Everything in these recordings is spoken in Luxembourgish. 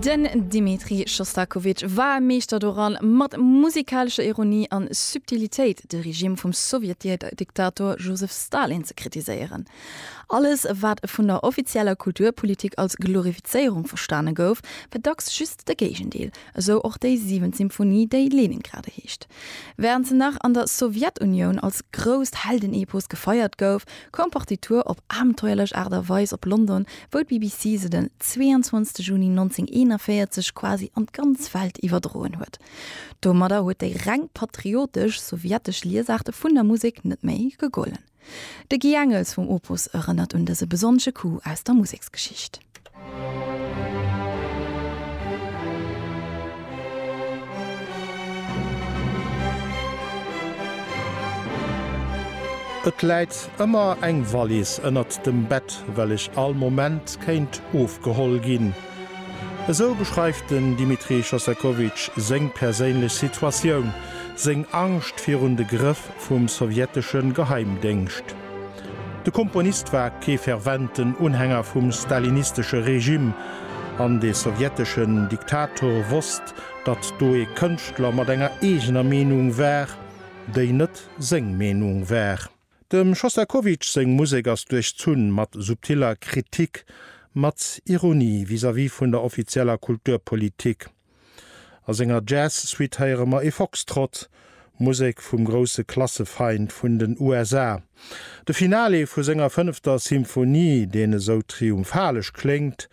Den Dmitri Schostakowitsch war e Meeschter doran, mat musikalescher Ironie an Subtilitéit de Regime vum Sowjetdiktator Josef Stalin ze kritiséieren. Alles, wat vun der offizieller Kulturpolitik als Glorifizéierung verstane gouf, war dacks just de Géigendeel, esou och déi siwent Symphonie, déi Leningrade heescht. Wärend se nach an der Sowjetunioun als grousst Heldenepos gefeiert gouf, koum d'Partitur op abenteuerlech Aart a Weis op London, wou d'BBC se den 22 Juni 1941 quasi an d'ganz Welt iwwerdroen huet. Domadder huet déi reng patriotesch sowjetesch Liesaart vun der Musek net méi gegollen. De Guy Engels vum Opus erënnert un dëse besonnesche Coup aus der Museksgeschicht. Et läit ëmmer eng Wallis ënnert dem Bett, well ech all Moment kéint ofgeholl ginn. Esou beschreift den Dimitrij Shostakovich seng perséinlech Situatioun, seng Angscht virun de Grëff vum sowjettesche Geheimdéngscht. De Komponist war kee ferventen Unhänger vum stalinistesche Regime, an de sowjeteschen Diktator wosst, datt do ee Kënschtler mat enger eegener Meenung war, déi net seng Meenung war. Dem Schostakowitsch seng Musek ass duerchzunn mat subtiller Kritik, mat Ironie vis-à-vis vun der offizieller Kulturpolitik. A senger Jazz-Suite héiere mer e Foxtrott, Musek vum grousse Klassefeind vun den USA. De Finale vu senger fënnefter Symphonie, deen esou triumphalesch kléngt,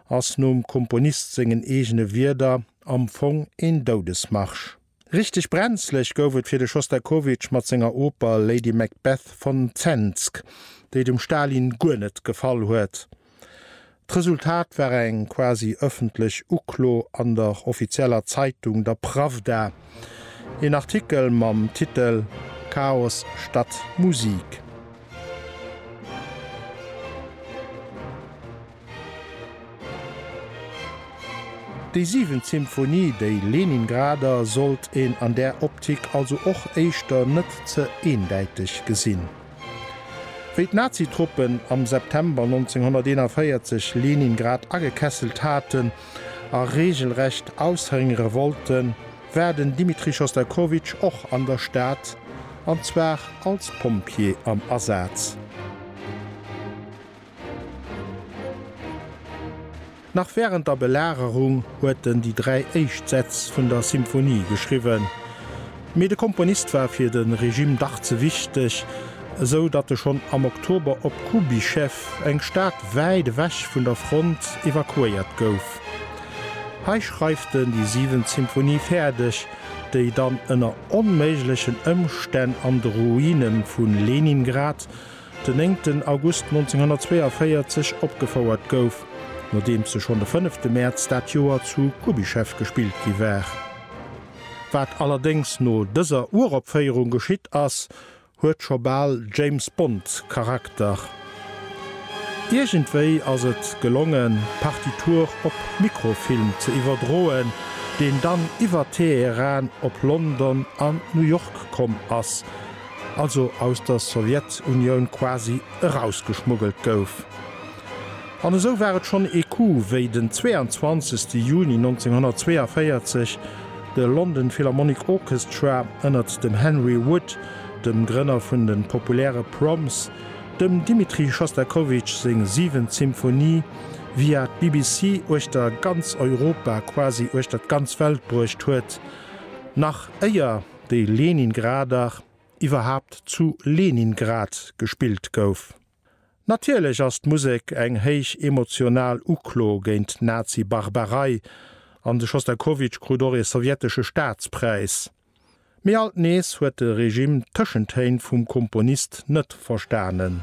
ass nom Komponist sengen eegene Wierder am Fong een Doudesmarsch. Richteg brenzlech gouf et fir de Schostakowitsch mat senger Oper Lady Macbeth von Zemsk, déi dem Stalin guer net gefall huet. D'Resultat war eng quasi ëffentlech Uklo an der offizieller Zeitung, der Prawda, een Artikel mam Titel Chaos statt Musik. Déi siwent Symphonie, déi Leningrader, sollt een an där Optik also och éischter net ze eendäiteg gesinn. Wéi d'Nazi-Truppen am September 1941 Leningrad agekesselt haten a reegelrecht aushëngere wollten, war den Dmitri Schostakowitsch och an der Stad, an zwar als Pompjee am Asaz. Nach wärend der Belagerung huet en déi dräi éischt Sätz vun der Symphonie geschriwwen. Mee de Komponist war fir de Regime dach ze wichteg, esou datt e schonn am Oktober op Kubischew, eng Stad wäit ewech vun der Front, evakuéiert gouf. Hei schreift en déi siwent Symphonie fäerdeg, déi dann ënner onméiglechen Ëmstänn an de Ruine vu Leningrad, den 9 August 1942 opgefouert gouf, nodeems se schonn de 5 de Mäerz dat Joer zu Kubischew gespillt gi war. Wat allerdéngs no dëser Uropféierung geschitt ass, huet scho bal James-Bond-Charakter. Iergendwéi ass et gelongen, d'Partitur op Mikrofilm ze iwwerdroen, deen dann iwwer Teheran op London an New York komm ass, also aus der Sowjetunioun quasi erausgeschmuggelt gouf. An esou war et schonn ee Coup, wéi den 22 Juni 1942 de London Philharmonic Orchestra ënnert dem Henry Wood, dem Grënner vun de populäre Proms, dem Dimitri Schostakowitsch seng siwent Symphonie via d'BBC uechter ganz Europa, quasi uechter d'ganz Welt bruecht huet, nach éier. déi Leningrader, iwwerhaapt zu Leningrad gespillt gouf. Natierlech ass d'Musek eng héich emotional Uklo géint d'Nazi-Barbarei, an de Schostakowitsch krut och ee sowjetesche Staatspräis. Mee alt nees huet de Regime d'Tëschentéin vum Komponist net verstanen.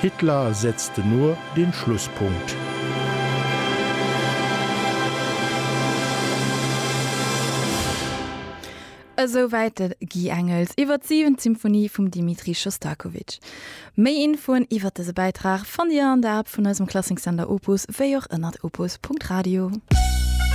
Hitler setzt den Ohr den Schlusspunkt. Esou wäit de Guy Engels iwwer d'Siwentsymphonie vum Dimitri Schostakowitsch. Méi Infoen iwwer dëse Bäitrag fannt Dir an der App vun eisem Klassiksender Opus, wéi och ënnert opus.radio.